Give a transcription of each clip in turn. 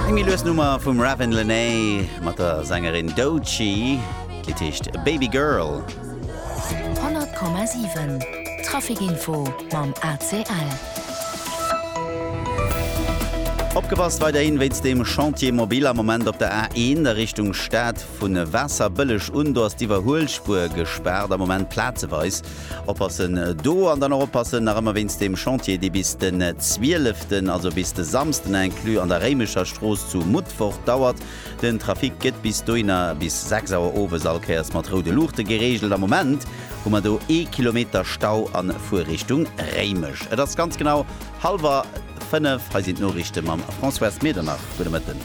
Eng méi lues Nummer vum Ravin Lenae mat der Sängerin Doechii. D'Lidd heescht Baby Girl. 100,7 Trafic Info mam ACL. Opgepasst weiderhin wéinst dem Chantier mobile am Moment op der A1 a Richtung Stad. Vun e Waasserbëlleg un, do ass d'Iwwerhuelspuer gespaart, am Moment plazeweis. Oppassen do an dann och oppassen nach ëmmer wéinst deem Chantier, dee bis den 12, also bis de Samsden inclus, an der Réimecher Strooss zu Mutfort dauert. Den Trafic gëtt bis dohinner, bis 6 Auer owes, all Kéiers mat roude Luuchte gereegelt. Am Moment hu mer do ee Kilometer Stau a Fuerrichtung Réimech. Et ass ganz genau hallwer. 5, hei sinn d'Noriichte mam Françoise Medernach. Gudde Mëtten.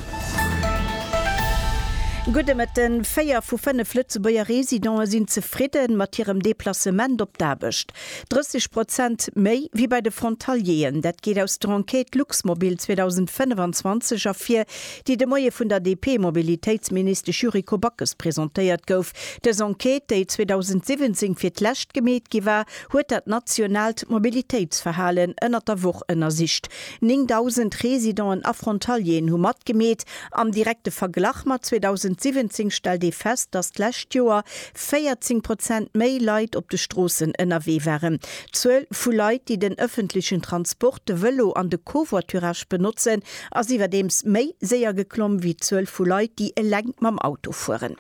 Gudde Mëtten. Véier vu fënnef Lëtzebuerger Residente sinn zefridde mat hirem Deplacement op d'Aarbecht. 30 Prozent méi wéi bei de Frontalieren. Dat geet aus der Enquête Luxmobil 2025 ervir, déi de Moie vun der DP-Mobilitéitsministesch Yuriko Backes presentéiert gouf. Dës Enquête, déi 2017 fir d'lescht gemeet gi war, huet dat nationaalt Mobilitéitsverhalen ënnert der Woch ënnersicht. 9.000 Residenten a Frontalieren hu matgemeet. Am direkte Verglach mat 2017 stellt ee fest, datt d'lescht Joer 14 Prozent méi Leit op de Stroossen ënnerwee waren. D'Zuel vu Leit, déi den ëffentlechen Transport, de Vëlo an de Covoiturage benotzen, ass iwwerdeems méi séier geklomm wéi d'Zuel vu Leit, déi eleng mam Auto fueren.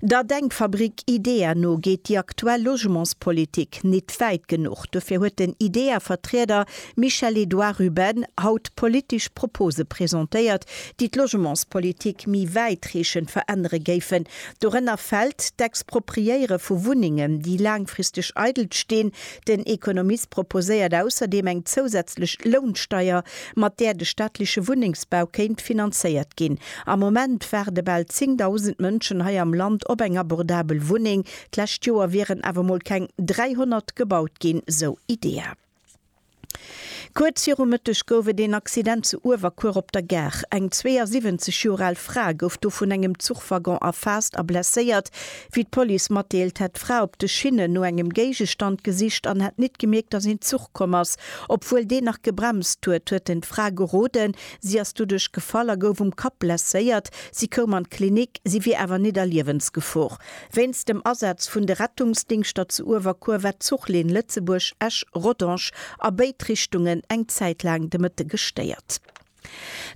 Der Denkfabrik IDEA no geet déi aktuell Logementspolitik nit wäit genuch. Dofir huet den IDEA-Vertrieder Michel-Edouard Ruben haut politesch Propose presentéiert, déi d'Logementspolitik méi wäitreechend verännere géifen. Dorënner fält d'Expropriéiere vu Wunnengen, déi laangfristeg eidel stinn, Den Economist proposéiert ausserdeem eng zousätzlech Lounsteier, mat där de staatleche Wunnengsbau kéint finanzéiert ginn. Am Moment waarde bal 10.000 Mënschen hei am Land op eng abordabel Wunneng. D'lescht Joer wieren awer mol keng 300 gebaut ginn, sou IDEA. Kuerz viru Mëtteg gouf et een Accident zu Uewerkuer op der Gare. Eng 72 Joer al Fra gouf do vun engem Zuchwaggon erfaasst a blesséiert. Wéi d'Police matdeelt, hätt d'Fra op de Schinnen no engem Géigestand gesicht an hätt nit gemierkt, datt een Zuch komm ass. Obwuel deen nach gebremst huet, huet en d'Fra geroden. Si ass doduerch gefall a gouf um Kapp blesséiert. Si koum an d'Klinik, si wier awer nit a Liewensgefor. Wéinst dem Asaz vun de Rettungsdingschter zu Uewerkuer war d'Zuchlinn Lëtzebuerg, Esch, Rodange a béid Richtungen eng Zäit laang de Mëtte gestéiert.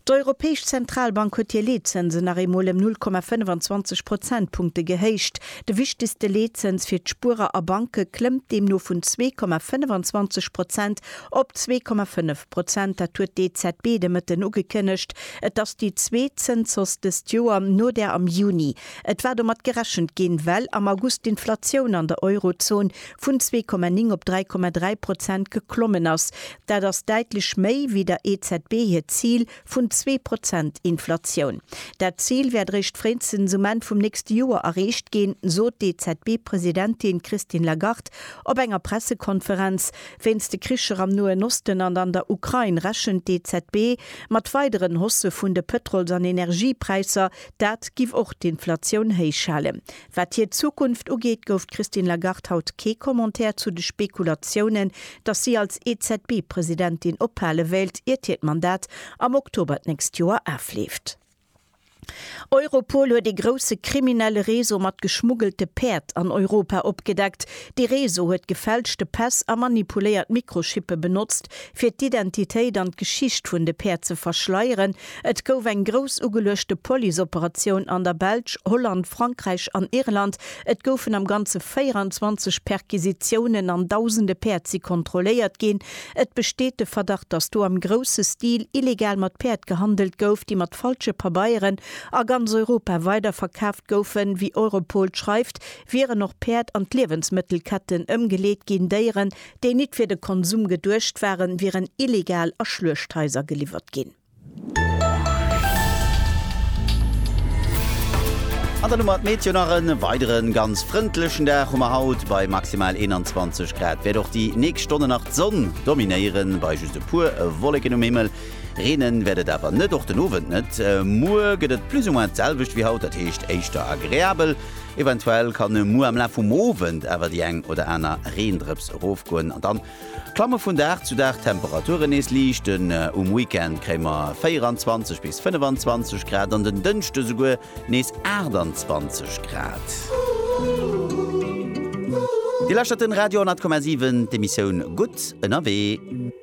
D'Europäesch Zentralbank huet hir Leetzënsen nach eemol ëm 0,25 Prozentpunkte gehéicht. De wichtegste Leetzëns fir d'Spuerer a Banke klëmmt deemno vun zwee Komma 25 Prozent op zwee Komma fënnef Prozent. Dat huet d'EZB de Mëtten ugekënnegt. Et ass déi zweet Zënshausse dëst Joer, no där am Juni. Et war domat gerechent ginn, well am August d'Inflatioun an der Eurozon vun zwee Komma ning op dräi Komma dräi Prozent geklommen ass. Dat ass däitlech méi wéi der EZB hiert Zil vun zwee Prozent Inflatioun. Dat Zil wäert eréischt fréistens um Enn vum nächste Joer erreecht ginn, sot d'EZB-Presidentin Christine Lagarde op enger Pressekonferenz. Wéinst de Kricher am Noen Osten an an der Ukrain rechent d'EZB mat weideren Haussë vun de Pëtrols an Energiepräisser, Dat giff och d'Inflatioun héich halen. Wat hir Zukunft ugeet, gouf d'Christine Lagarde haut kee Commentaire zu de Spekulatiounen, datt si als EZB-Presidentin ophale wéilt, iert hiert Mandat am Oktober d'nächst Joer afleeft. Europol huet ee grousse kriminelle Réseau mat geschmuggelte Päerd an Europa opgedeckt. Dee Réseau huet gefälschte Päss a manipuléiert Mikrochippe benotzt, fir d'Identitéit an d'Geschicht vun de Päerd ze verschleieren, Et gouf eng grouss ugeluechte Policeoperatioun an der Belsch, Holland, Frankräich an Irland. Et goufen am Ganze 24 Perquisitiounen an dausende Päerd si kontrolléiert ginn. Et besteet de Verdacht, datt do am grousse Stil illegal mat Päerd gehandelt gouf, déi mat falsche Pabeieren a ganz Europa weiderverkaaft goufen. Wéi Europol schreift, wieren och Päerd an d'Liewensmëttelketten ëmgeleet ginn, Déieren, déi nit fir de Konsum geduecht waren, wieren illegal a Schluechthaiser geliwwert ginn. An der Nummer Meteo nach en weideren ganz frëndlechen Dag hu mer haut, bei maximal 21 Grad wäert och déi nächst Stonnen nach d'Sonn dominéieren, bei just e puer Wolleken um Himmel. Reenen wäert et awer net, och den Owend net. Muer gëtt et plus ou moins d'selwecht wéi haut, dat heescht éischter agreabel. Eventuell kann e muer am Laf vum Owend awer déi eng oder aner Reendrëps erofgoen an dann klamme vun Dag zu Dag d'Temperaturen nees liicht un. Um Weekend kréie mer 24 bis 25 Grad an den Dënschde souguer nees 28 Grad. Dir lauschtert den Radio 10,7, d'Emissioun Gutt ënnerwee.